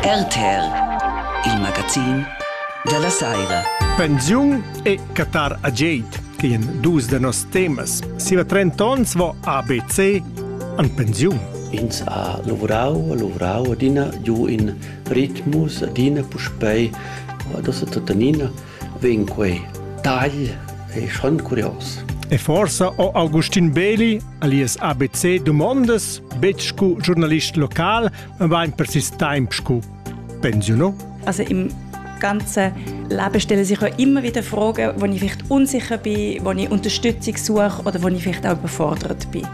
RTR, il magazin da la saira. Pensiun e Qatar Ageit, che en dus da nos temas. Siva 30 ons vo ABC an pensiun. Ins ha lavorau, lavorau adina giu in ritmus, adina puspei, das è tuttenina vegn quei tagl è schon curios. E forsa o Augustin Beli alias ABC domondas betg cu giornalist local ma vain persist temp scu pensiuno? Also im ganzen Leben stellen sich ja immer wieder Fragen, wo ich vielleicht unsicher bin, wo ich Unterstützung suche oder wo ich vielleicht auch überfordert bin.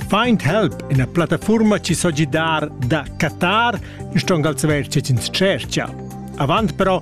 Find Help è una piattaforma ci so gidar da Qatar in stong als verci in Cercia. Avant però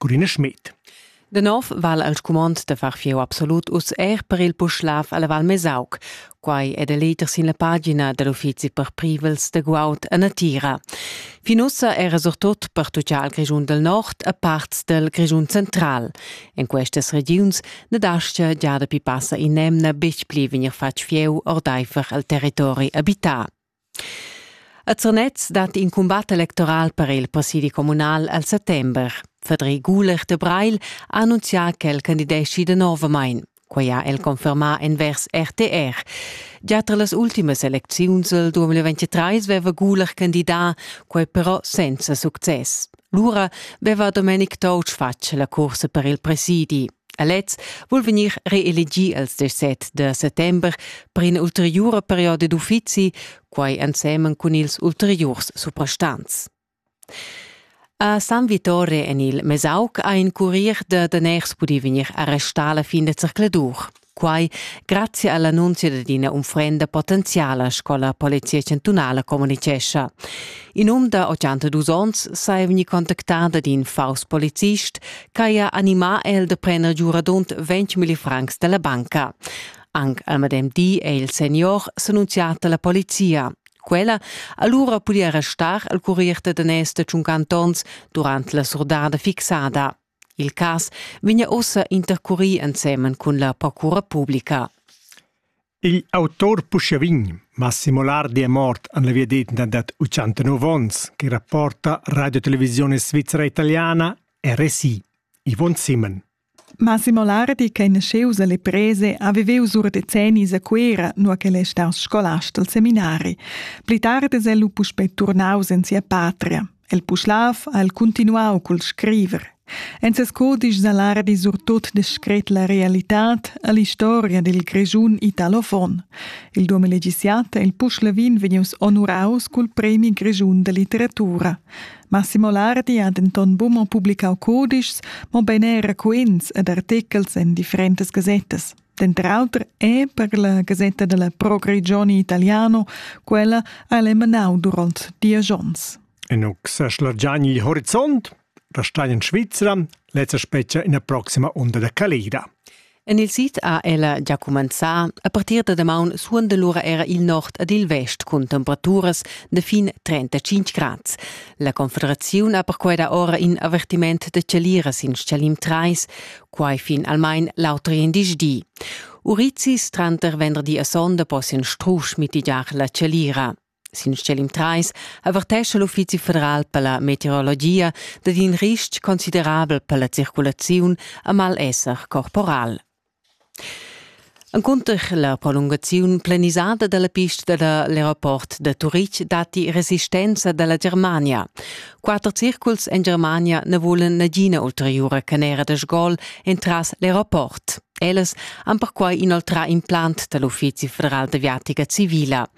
Corina Schmidt. De nov val el scumond de far fieu absolut uss er per il Puschlav alla Val Mesauc. Quai è de leter sin la pagina dell'uffizi per privels de guaud a Natira. Fin ussa era surtut per tutgia al Grischun del Nord a parts del Grischun central. In questas regiuns ne dascia già da pipassa in nemna betg pli vegnir fatg fieu ordaifer al territori abitat. A Zernez dat in cumbat electoral per il presidi communal al settember. Fedri Guler de Breil ha annunzià ch'el candideschi danovamain. Quai ha el confermà envers RTR. Già tra las ultimas elecziuns del 2023 veva Guler candidà, quai però senza success. Lura veva Domenic Touch fatg la cursa per il presidi. A lez vul vegnir reelegì als desset da settember per ina ulteriura perioda d'uffizi, quai ensemen cun ils ulteriurs suprastants. A San Vittore en il Mesauc ha in curier da daners pudì vegnir arrestà la fin da zercladur. Quai grazie all'annunzio ad ina unfrenda potenziala, sco la Polizia chantunala communicescha. In um da 82 onns sei vegni contactà ad in faus polizist Quai ha animà el da prener giuradont 20.000 francs dalla banca. Anc al medem di è il senior s'annunzià da la polizia. Quella allura pudia restar al currier da danès da tschuncantonts durant la surdada fixada. Il cas vegna ussa intercurì ensemen cun la procura publica. Igl autur puschia vegn Massimo Lardi è mort en la viadetna dad 89 onns che rapporta Radio Televisione Svizzera Italiana RSI. Yvonne Simon. Massimo Lardi, che nasceus alle prese, aveveus ur decennis a Cuera, nur che è staus scolast al seminari. Pli tardi è lu puspei turnaus in sia patria. El Puschlav ha el continuau cul scriver. En ses codisch Salardi surtut descret la realitad all'historia del Grischun italofon. Il duomo legissiata il Puschlavin vegnius onuraus cul premi Grischun de litteratura. Massimo Lardi ha denton buca publicau codischs, mobein era quints ed artechels en differentas gasettas. Denter auter è per la gasetta della Pro Grigioni Italiano quella ha emanau duront diesch onns. En seschla giani il horizont, da stai in Svizzera, lezza specia ina proxima onda da calida. En il sid ha ella già cumenzà. A partir da damaun suonda lura era il nord ed il vest cun temperaturas de fin 35 grad. La Confederaziun ha perquei da ora in avertiment de celiras in Schalim 3, quai fin almain l'auter di. Urizis tranter venderdi e sonda possian strusch mitigiar la chalira. Sin scelim 3 avertescha l'Uffizi federal per la meteorologia dad in ristg considerabel per la circulaziun a mal esser corporal. Encunter la prolungaziun planisada dalla pista dall'aeroport da Turitg datti resistenza dalla Germania. Quatter circuls en Germania ne volen nagina ulteriura canera da sgol entras l'aeroport. Ellas han perquai inoltrà implant dall'Uffizi federal d'aviatica civila.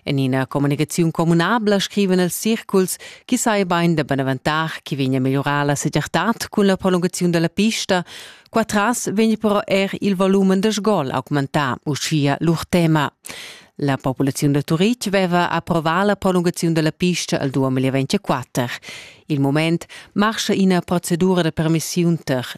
En ina comunicaziun communabla scriven els circuls chi sai bain da beneventar chi vegna a megliorar la segirtad cun la prolungaziun dalla pista, Qua tras vegn però er il volumen de sgol augmentà, uschia lur tema. La populaziun da Turitg veva approvà la prolungaziun della pista al 2024. Il moment marscha ina procedura de permissiun ter